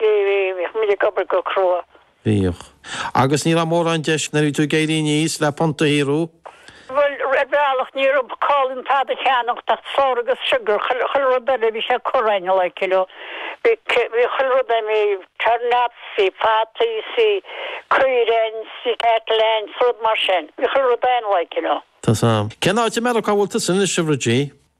Bhíodh muid ag obair go crua. Bhíodh. Agus ní raibh mórán deis nuair a bhí tú ag éirí aníos le punt a shaothrú. Bhuel, ar bhealach ní raibh call ann tada a cheannacht ach flour agus sugar, chuile rud eile bhí sé curtha againn, like, you know. Bhí chuile rud ann, bhí turnips, bhí fataí, bhí caoirigh ann, bhí cattle ann, rud mar sin. Bhí chuile rud ann, like, you know. Tá. Cén áit i Meiriceá a bhfuil tusa anois, a Bhridie?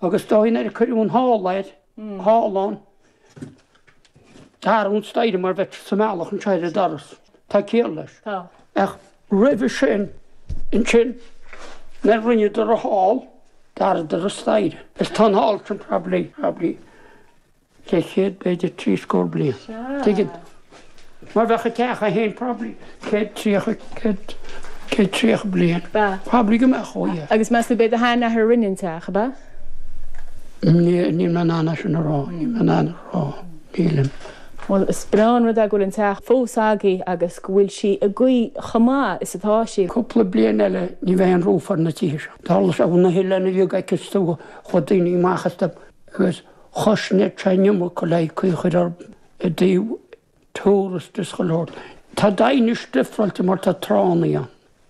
agus is dóigh nuair a cuireadh an hall air, halla an dara an staighre mar bheadh sé sa mbealach anseo ar an doras, tá ciall leis. Ach roimhe sin, ansin, nuair a rinneadar an hall, d'athraíodar an staighre. Is tá an hall sin, probably, probably, Leathchéad, b'fhéidir trí scór bliain. Sea. Tuigim. Mar bheadh an teach ann probably céad tríocha, céad, céad tríocha bliain. Ba. Probably go mbeadh, ó yeah. Agus meas tú b'é do shean-athair a rinne an teach, ab ea? Níl, níl mé in ann é sin a rá, níl mé in ann a rá, nílim. Bhuel, is breá an rud é go bhfuil an teach fós agaibh agus go bhfuil sí i gcaoi chomh maith is atá sí. Cúpla bliain eile ní bheidh an roof ar na tithe seo. Tharla sé, bhí na hoileáin a bhí ag ceistiú, chuaigh daoine amach as, agus. Chois na teineadh Mccauley cuí chuir ar i dtaobh turas de Scoil Shórna. Tá Daighinis difreáilte mar tá tránaí ann.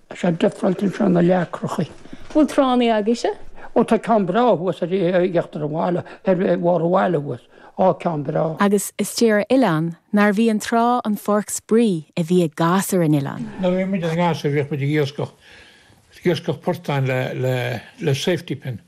Tá sé difreáilte anseo na leacrachaí. Bhfuil tránaí agaibhse? Ó tá ceann breá thuas ar uachtar an bhaile, ar bharr an bhaile thuas. Á ceann breá. Agus is dóigh ar oileán nárbh í an trá an pháirc spraoi a bhí ag gasúir an oileáin. Nuair a bhí muid ina ngasúir bhíodh muid ag iascach iascach portáin le safety pin.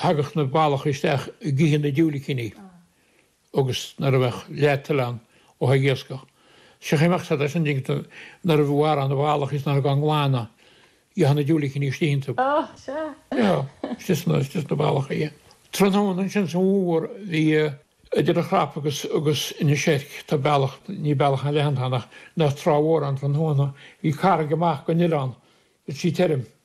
Thagadh na ballacha isteach ag ithe na diúilicíní agus nuair a bheadh leath tuile ann, bheadh ag iascach. Thiocfadh imeacht fada leis an dtinc nuair a mharófá na ballacha is nuair a ghabhfá á nglanadh, gheofá na diúilicíní istigh iontu. Sea, sea, istigh sna ballacha, aye. Tráthnóna ansin sa bhfómhar, bhí, idir an Chrapach agus Inis Eirc, tá bealach, ní bealach an-leathan atá ann ach, bheadh trá mhór ann tráthnóna, bhí carraig amach ón oileán, bhí sí tirim.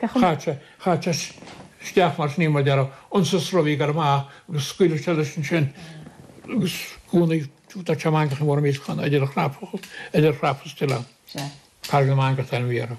Féach an. Chaite, chaite isteach mar sin í, mar a déarfá insa sruth í, gearradh amach agus scaoileadh sé leis ansin agus gúna do te mangach i bhfoirm iascán, idir chrap, idir Chrapach is an t-oileán. Sea. Carraig na Mangach an t-ainm a bhí uirthi.